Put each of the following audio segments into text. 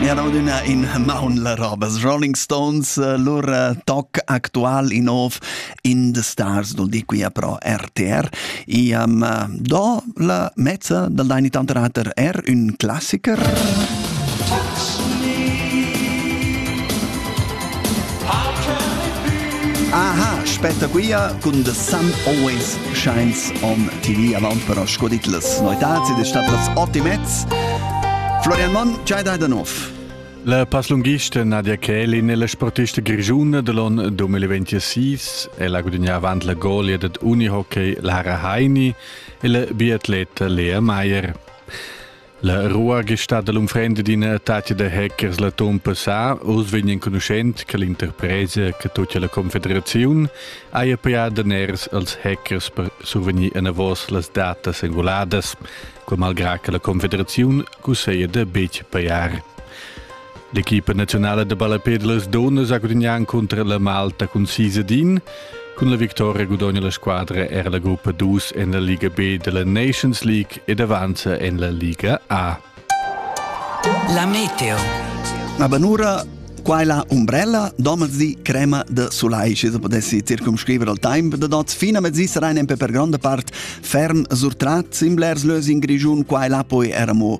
Era adüna in maun la robas Rolling Stones, eh, lur eh, toc actual in ov in The Stars, dol di quia pro RTR. Iam eh, do la mezza dal Deini Tanterater er un classiker. Aha, aspetta quia cun The Sun Always scheins on TV avaunt per sco dit las noitats ed è stat las ot e mezz. Florian Mann, c'hai da da nov? La passlunghista Nadia Kelin è la sportista grigiuna dell'on 2026 e la gudigna avant la golia dad unihockey Lara Heini e la biatleta Lea Meier. La rua che sta dall'unfrenda d'ina tatga da hackers l'atun passà oz vegn enconuschent che l'interpresa che tocca la confederaziun haja pajà daners als hackers per survegnir enavos las datas enguladas, quai malgrà che la confederaziun cusseglia da betg pajar. L'equipa naziunala da ballapè da las dunnas ha gudignà encunter la Malta cun sis ad in. Cun la victoria gudogna la squadra era la gruppa 2 en la Liga B da la Nations League ed avanza en la Liga A. La meteo. La banura Qua è la umbrella domezdi crema de sulai, se potessi circumscrivere al tempo de dots fina mezzi sarein empe per grande part ferm surtrat simblers lös in Grigiun, qua e là poi eramo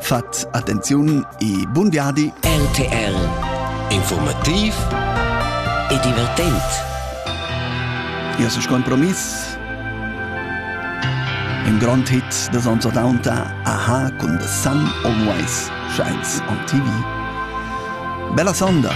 Fat attenziun e bun viadi! RTL Informativ e divertent. Ia se compromiss Im Grand Hit des Anser Daunter Aha cun The Sun Always Shines on TV. Bella sonda!